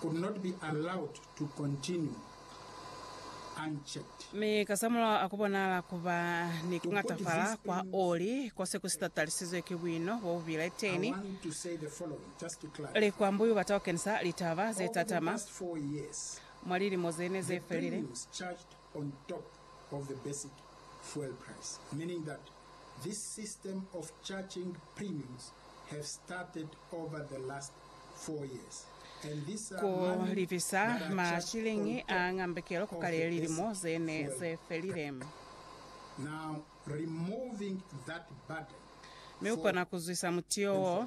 could not be allowed to continue unchecked. Mi kasamulaho a ku bonala ku ba ni ku ngatafala kwa oli ko se ku si tatalisizwe ki buino bo bu bile teni, likwambuyu ba tau kenisa litaba ze tatama mwa lilimo ze ne ze felile. This system of charging premiums have started over the last four years and these are Ku money lifisa that are ma charged on shiliñi a top ngambekelo ku of kale the lilimo basic ze ne fuel ze felile. price. Now removing that burden Mi u for kona ku zwisa mutio wo.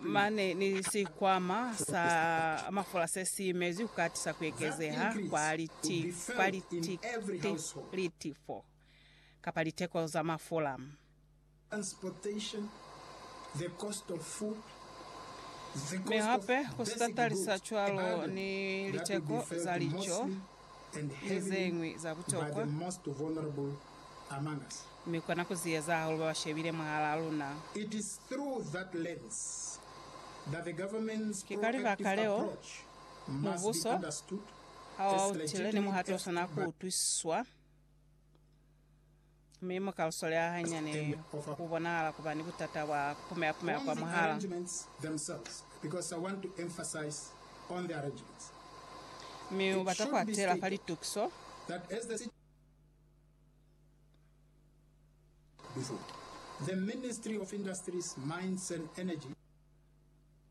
mane ni sikwama sa mafola se si imezwi ku katisa ku ekezeha kwa liti, kwa liti, ti, litifo kapa liteko za mafola. transportation, the cost of food, the Mi cost of hape ku si basic tatalisa goods, cwalo and ni other, that will be liteko felt za lico mostly ni ze ñwi za butokwa, mi kona ku ziyeza hahulu ba ba shebile mwahalaa luna. Ki ka libaka leo, mubuso ha wa utile ni muhato o swana ku utwisiswa. Mi mu ka lu soleha hanyani ku bonahala ku ba ni butata bwa ku pumeha-pumeha kwa mwahala. Mi u bata ku atela fa litukiso za.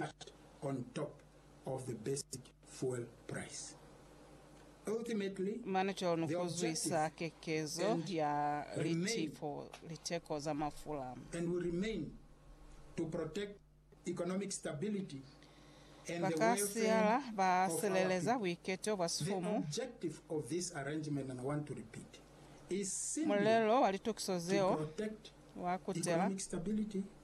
add on top of the basic fuel price. Ultimately, Mane cwalo ni the ku zwisa objective kekezo and ya remain litefo, liteko za mafula. and will remain to protect economic stability and Ba the ka welfare siala ba of our sileleza people. buiketo bwa The sifumu. objective of this arrangement, and I want to repeat, is simply Mulelo wa litokiso to zeo protect wa kutela economic stability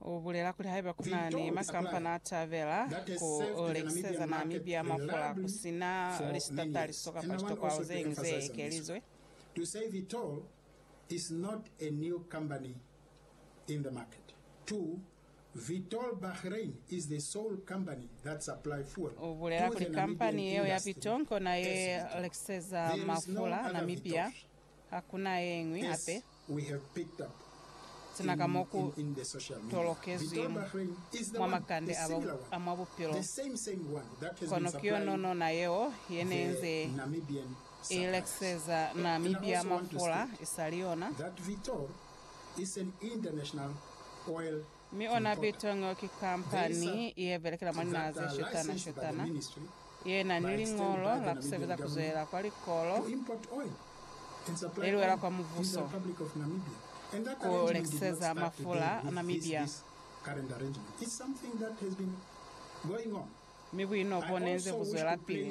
U bulela kuli haiba ku na ni makampani a tabela ku lekiseza Namibia mafula ku si na lisitataliso kapa litokwalo ze ñwi ze ekelizwe. U bulela kuli kampani yeo ya Vitol kona ye lekiseza mafula Namibia. Hakuna yeñwi hape sina ka mo ku tolokezwi mwa makande a mwa bupilo, kono ki yononona yeo ye ne nze i lekiseza Namibia mafula isali yona. Mi ona Biltong yo ki kampani ye belekela mwa linaha ze shutana shutana ye na ni liñolo la ku sebeza ku zwelela kwa likolo le li wela kwa mubuso ku lekiseza mafula a Namibia. Mi buino bo ne nze bu zwelapili.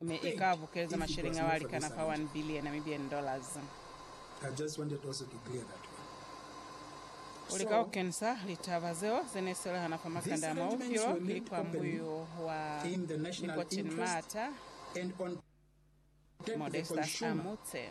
me i ka bukeleza masheleñi ao a likana fa one billion Namibian dollars. U lika ku kenisa litaba zeo ze ne si lehana fa makanda a mwa bupilo ki likwambuyu wa Nicotine Maata Modestus Amutse.